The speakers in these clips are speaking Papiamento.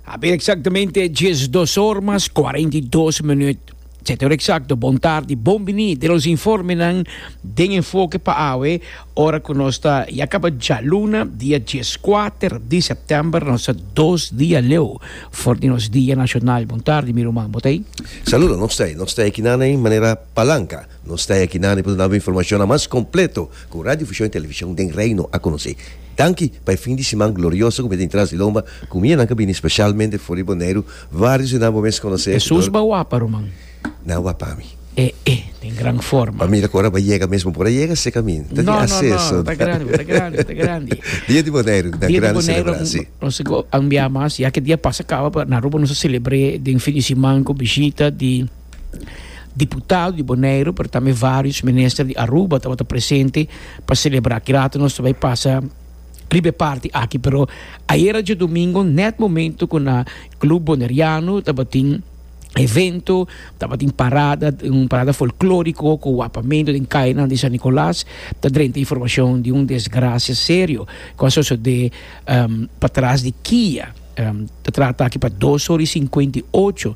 Abir exactamente dies dos or mas cuarenta y dos minuut. Zetor exacto, bon tardi, bon bini den nos informenan den enfoke pa awe, ora cu nos ta ya caba djaluna, dia dies kuater di september, nos ta dos dia leu for di nos dia nacional. Bon tardi mi ruman, bo ta ei? Saludo, no stay. No stay aki nada ei manera palanca. Nos ta akinan riba duna bo informashonnan mas kompleto ku Radio Fushon i Televishon den Reino a konosé. Danki pa e fin di siman glorioso ku mester tin tras di lomba ku mi e nan ku a bini speshalmente for di Boneiru, vários di nan bo mes konosé. Hesus ba wapa, ruman. Na wap pa mi. E e den gran forma. Pa mi ta kora ba yega mesmo por a yega se kamin. Ta tin aseso. No no no ta grandi bo ta grandi bo ta grandi. Dia di Boneiru na grandi selebrá si. Nos a bia mas ya ke dia pasa kaba pa na Aruba nos a selebré den fin di siman ku bishita di. Diputado di Boneiru pero tambe varios minister di Aruba tabata presente pa celebra aki rato nos ta bay pasa riba e party aki pero ayera djodomingo net momento cu na club Boneriano tabatin evento tabatin parada un parada folklorico cu wapamento den cainan di San Nicolas ta drenta informacion di un desgracia serio cu a sosode patras di kia. Ta trata aki pa dos ora i sinkuenta i ocho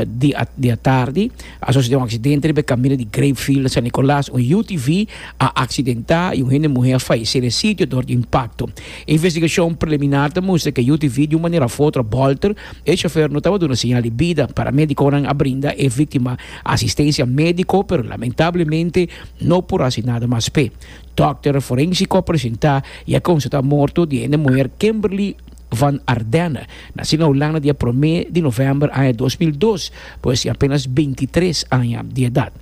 di atardi. A sosodé un aksidente riba e kaminda di Grapeville na San Nicolas. Un UTV a aksidentá i un hende muhé a falesé na e sitio dor di impakto. E investigashon preliminar ta mustra ku e UTV di un manera òf otro a bòlter. E shofèr no tabata duna señal di bida. Paramédikonan a brinda e víktima asistensia médiko, pero lamentablemente no por hasi nada mas p'e. Dòkter forénsiko a presentá i a konstatá morto di e hende muher Kimberly. Van Ardenne, nací na Hulanda di e promé di novèmber aña dos mil dos, por esei apénas bintitres aña di edat.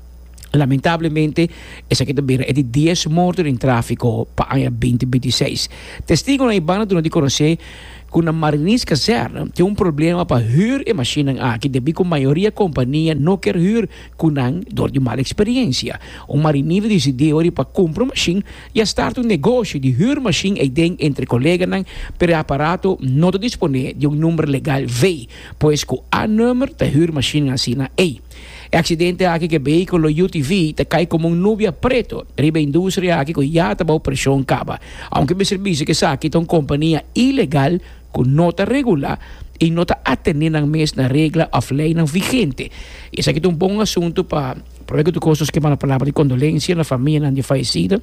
Lamentablemente, esaki ta bira e di dies morto den tráfiko pa aña binti binti seis. Testigonan i banda duna di konosé ku na Mariniskazerne tin un problema pa hür e mashinnan aki debí ku mayoria kompania no kier hür ku nan dor di mal eksperiensia. Un marinero disidí ora i pa kumpra un mashin I a starta un negoshi di hür mashin eiden entre koleganan, pero e aparato no ta disponé di un number legal vei, pues ku A-nummer ta hür mashinnan asina ei. E aksidente aki ku e beikulo UTV ta kai komo un nubia preto riba e industria aki ku ya ta bou preshon kaba, ounke mester bisa ku esaki ta un kompania ilegal ku no ta regulá i no ta atené nan mes na regla òf leinan vigente. I esaki ta un bon asuntu pa. Por esaki ta kos nos ke manda palabra di kondolensia na famianan di fallecida,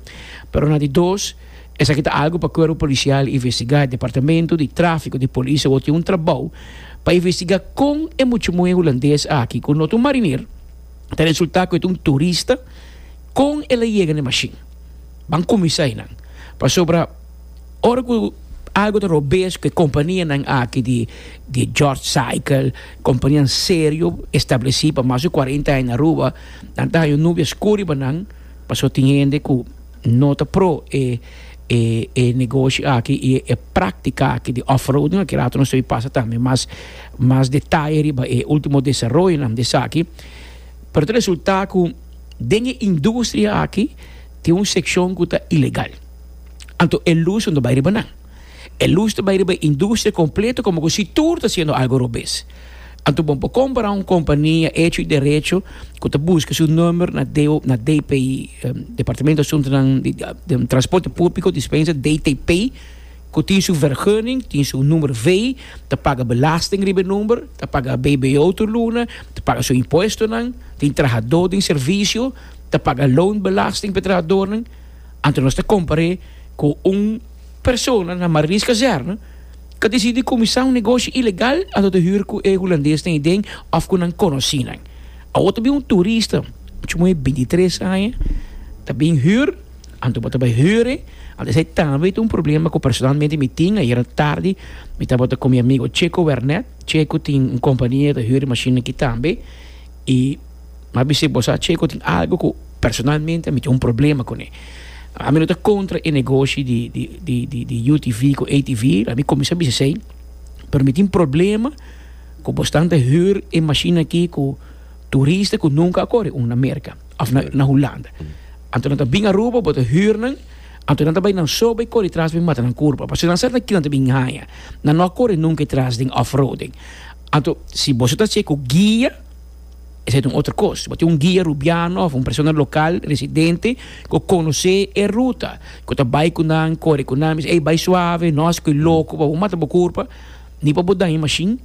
pero na di dos esaki ta algu pa Cuerpo Policial investigá. Departamento di Tráfico di Polis awor tin un trabou pa investigá kon e muchumoe hulandes aki, ku no ta un mariner, ta resultá ku e ta un turista, kon el a yega na e mashin. Ban kuminsá einan, pasobra. Ora ku algu ta robes ku e kompanianan aki di di George Cycle, kompanianan serio, establesí pa mas di kuarenta aña na Aruba, nan ta haña un nube oskur riba nan, pasobra tin hende ku no ta pro e e e negoshi aki i e práktika aki di off-roading aki. Kerato nos ta bin pasa tambe mas mas detaye riba e último desaroyonan di esaki. Pero ta resultá ku den e industria aki tin un sekshon ku ta ilegal. Anto e lus no ta bai riba nan. E lus ta bai riba e industria completo como cu si tur ta haciendo algo robes. Anto bon pa compara un compania hecho y derecho cu ta busca su number na DO na DPI, Departamento Asuntonan di di Transporte Publico, dispensa, DTP, cu tin su vergunning, tin su number vee, ta paga belasting riba e number, ta paga BBO tur luna, ta paga su impuestonan, tin trahador den servicio, ta paga loonbelasting pa e trahadornan. Anto nos ta compar'é cu un persona na Marlies Kazerne ca decidi cuminsa un negoshi ilegal anto ta huur cu e Hulandeesnan i den of cu nan conoci nan. Awor ta bin un turista, mucho moe bintitres aña, ta bin huur, anto bo ta bai huur'é, anto esei tambe ta un problema cu personalmente mi tin. Ayera tardi mi tabata cu mi amigo Checo Wernet, Checo tin un compania ta huur e mashinnan aki tambe i. M'a bisa e bosa Checo tin algo cu personalmente mi tin un problema con e. A mi no ta contra e negoshi di, di, di, di, di UTV cu ATV, la mi cominsá bisa esei, pero mi tin problema cu bos tan ta huur e mashina aki cu turista cu nunca a kore un na Merka of na, na Hulanda. Anto nan ta bin Aruba, bo ta huur nan, anto nan ta bai nan so bai kore tras bin mata nan curba, pasobra nan sa ta kilanan ta bin haña, nan no a kore nunca e tras den off-roading. Anto, si boso ta haci e cu guia, Esei ta un otro kos. Bo tin un guia rubiano of un persona lokal, residente, ku konosé e ruta, ku ta bai ku nan, kore ku nan, bisa, Ey, bai suave, no hasi ku e loko, pa bo mata bo kurpa, ni pa bo daña e mashin,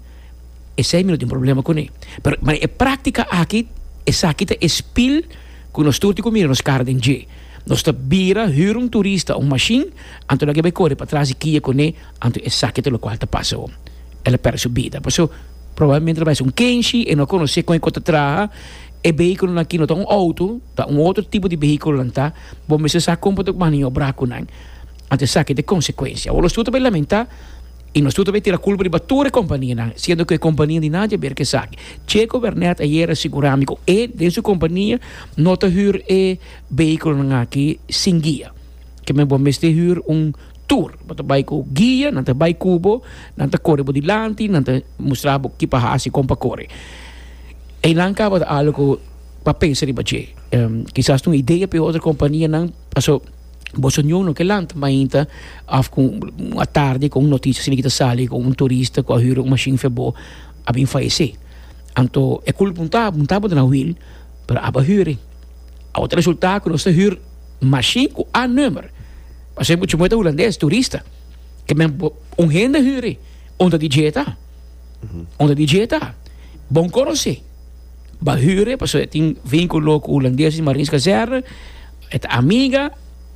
esei mi no tin problema kuné. Pero, mara e práktika aki, esaki ta e spil ku nos tur tin ku mira nos kara den dje. Nos ta bira, hür un turista un mashin, anto laga e bai kore patras di kia kuné, anto esaki ta lokual ta pasa awor. El a pèrdè su bida. Paso. Probablemente lo bai sun kenshi e no a conoce con e cota traha, e vehiculonan aki no ta un auto, ta un otro tipo di vehiculonan ta, bo mester sa con bo ta maniobra cu nan, anto esaki ta e consecuencia. Awor nos tur ta bay lamenta y nos tur ta bay tira culpa riba tur e companianan, siendo cu e compania di nan dja ber cu esaki. Checo Bernet ayer a sigura mi cu e den su compania no ta huur e vehiculonan aki sin guia, ke men bo mester huur un. tur. Bo ta bai ku guia, nan ta bai ku bo, nan ta kore bo dilanti, nan ta mustra bo ki pa hasi, kon pa kore. Einan tabata algu pa pensa riba dje. Kisas ta un idea p'e otro kompanianan, paso boso niun no ke lanta mainta òf ku un atardi ku un notisia asina ku ta sali ku un turista ku a hura un mashin for bo a bin fayesé. Anto e kulpa no ta, no tabata na wiel, pero aba hur'e. Awor ta resultá ku nos ta hür mashin ku A-nùmer. Pas'e mucha moeda hulandes, turista. Ke men un hende huri, onda di jeta. Onda di jeta. Bon konosé. Ba huri, paso e tin vínkulo ku hulandes di Marins Kazerne, e ta amiga,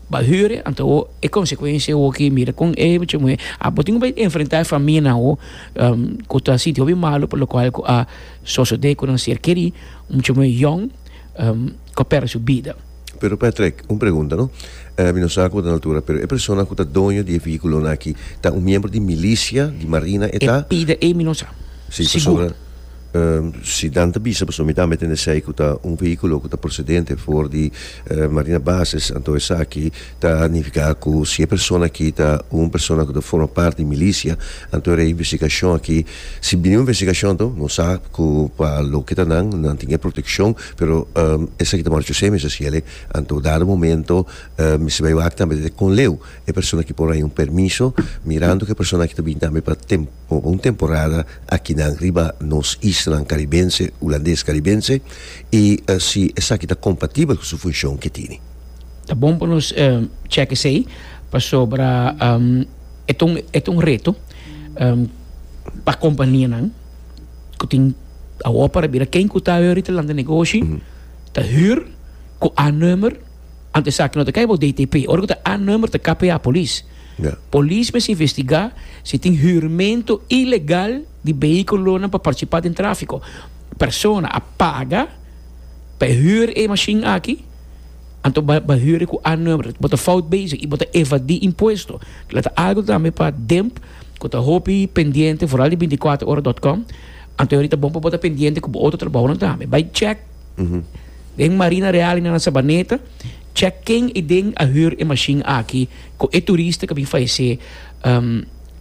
ba huri, anto o e konsekuensia o ki mira kon e mucha moeda. A bo tin ku bai enfrentá e famia nan o ku ta sinti hopi malu por lo kual ku a sosodé ku nan ser kerí, mucha moeda yòn ku a pèrdè su bida. Pero Patrick, un pregunta no. Mi no sa cu bo ta na altura, pero e persona cu ta doño di e vehiculonan aki, ta un miembro di milicia, di marina e ta? E pida ei mi no sa. Si, pasobra si nan ta bisa pasobra mi tambe tene esey cu ta un vehiculo cu ta procedente for di marina bases, anto esaki ta nifica cu si e persona aki ta un persona cu ta forma parti di milicia, anto era e investigacion aki, si bini un investigacion to, no sa cu pa loke ta nan, nan tin e proteccion. Pero esaki ta marcha semi sa ciele, anto dado momento mi sta bai wak tambe ta con leu e persona aki por haña un permiso mirando cu e persona aki ta bini tambe pa tempo pa un temporada akinan riba nos islanan caribense hulandes caribense y si esaki ta compatibel cu su funcion cu e tini. Ta bon pa nos check esey pasobra e ta un reto pa companianan. ku tin awor para bira ken ku ta ahorita lanta negoshi ta hür ku a number anto esaki no ta kai bo DTP ora ku ta a number ta KPA polis Ya. polis mes investigá si tin hürmento ilegal di behikulonan pa partisipá den tráfiko persona a paga pa e hür e mashin aki anto ba ba hür ku a number bo ta fout bezig i bo ta evadí impuesto kila ta algu tambe pa demp ku ta hopi pendiente foral di binticuatrohoradotcom anto ahorita bon pa bo ta pendiente ku bo otro trabahonan tambe bai check den marina real i na nan sabaneta check ken i den a hür e mashin aki ku e turista ku a bin fallecé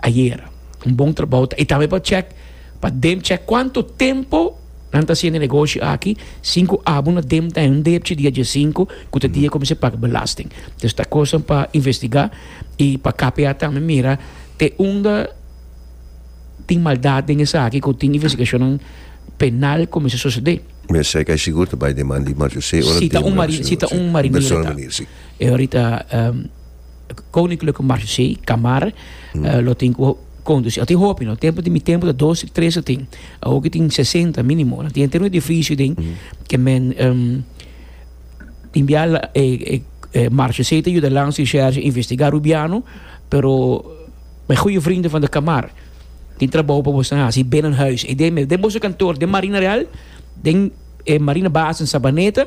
ayera un bon trabou ta i tambe pa check pa den check kuantu tempu Nan ta siende negoshi aki sin ku abo na dem ta un depchi dia diesinku ku ta dia ku mester paga belasting. Dus ta kosnan pa investigá i pa KPA tambe mira te unda tin maldat den esaki ku tin investigashonnan penal ku mester sosodé. Mester sai kai sigur ta bai den man di Marc José ora den Marc José. Si ta un marinero ta. Bersona manera si. E orita. Koninklijke Marché, Kamar, lo tin ku kondusí. Tin hopi, no? Tempu di mi tempu ta dos, tres lo tin. Awor ki tin sesenta mínimo. Lo tin henter un edifisio den ke men um, tin bia e, e, e Marchesé ta yuda lans di shèrs investigá Rubiano, pero mi goeie vrienden van de Kamar tin trabou pa boso hasi binnenhuis. I den, den boso kantoor, den Marina Real, den e Marina Base in Sabaneta,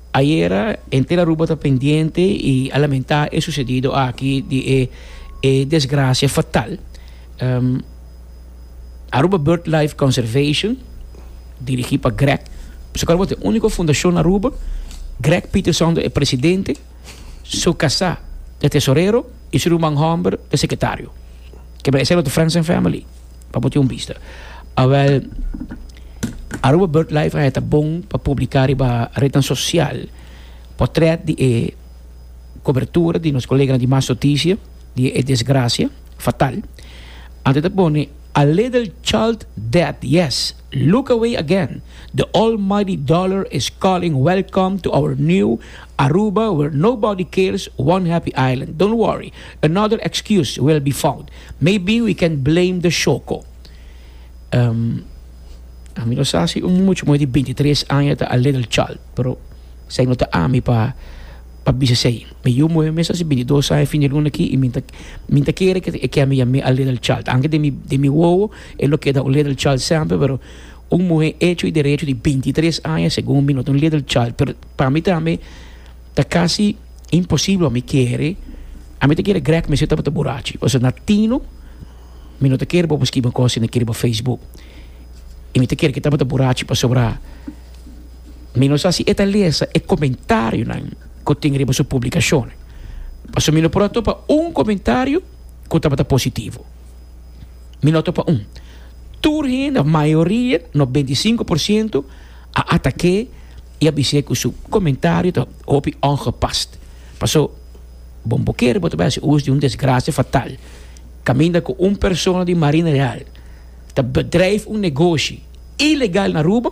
Ayera henter Aruba ta pendiente y a lamenta e sucedido aki di e e desgracia fatal. Aruba Bird Life Conservation, dirigi pa Greg, su kaba ta e unico fundacion na Aruba, Greg Peterson ta e presidente, su casa ta tesorero y su ruman homber ta secretario. Kibra esei lo ta Friends and Family. pa bo tin un bista. Awel, Aruba BirdLife a heta bon pa publiká riba retnan sosial potrèt di e kobertura di nos koleganan di Mas Notisia di e desgrasia fatal. Anto ta pone a little child dead, yes! Look away again, the almighty dollar is calling welcome to our new Aruba where nobody cares one happy island don't worry another excuse will be found maybe we can blame the shoko um ami no sa si un mucho moe di binti tres aña ta a little child pero esei no ta ami pa pa bisa esei mi yu moe mester si binti dos aña fin di luna aki y mi ta mi ta kere ke ke mi yam'e a little child anke den mi den mi wowo E lo keda un little child semper pero un muhe echo y derecho di bintitres aña segun mi no ta un little child pero pa mi tambe ta casi imposible pa mi kere a mi ta kere grek mester tabata burachi pasobra na tino mi no ta kere bobo skiba cos y na kere bo facebook y mi ta kere ke tabata burachi pasobra mi no sa si e ta lesa e comentariunan cu tin riba su publicacionnan pasobra mi no por a topa un comentario cu tabata positivo. mi no ta pa un. Tur hende, mayoria, no beinti sinku por siento, a atak'é i a bis'é ku su komentario ta hopi ongepast. Paso, bon bo kere bo ta bai hasi us di un desgrasia fatal kaminda ku un persona di Marina Real ta bedrijf un negoshi ilegal na Aruba,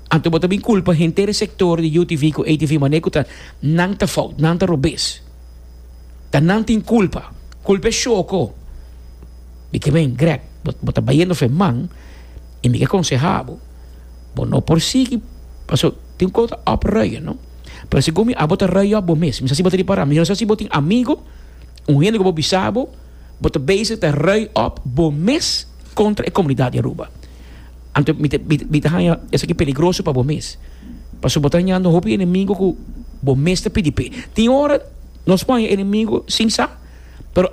anto bo ta bin kulpa henter e sektor di UTV ku ATV mané ku ta nan ta fout, nan ta robes. Ta nan tin culpa. Culpa e shoko. Mi ke men, Greg, bo, bo ta bayendo fe man i mi ke aconseha bo, bo no por sigui paso tin un cosa ta op rui, no? Pero segun mi abo ta rui op bo mes. Mi sa si bo ta ripara, mi no sa si bo tin amigo, un hende ku bo bisa bo, bo ta bezig ta rui op bo mes kontra e komunidat di Aruba. Anto mi ta mi ta haña esaki peligroso pa bo mes, pasobra bo ta hañando hopi enemigo ku bo mes ta pidi p'e. Tin ora nos por haña enemigo sin sa, pero.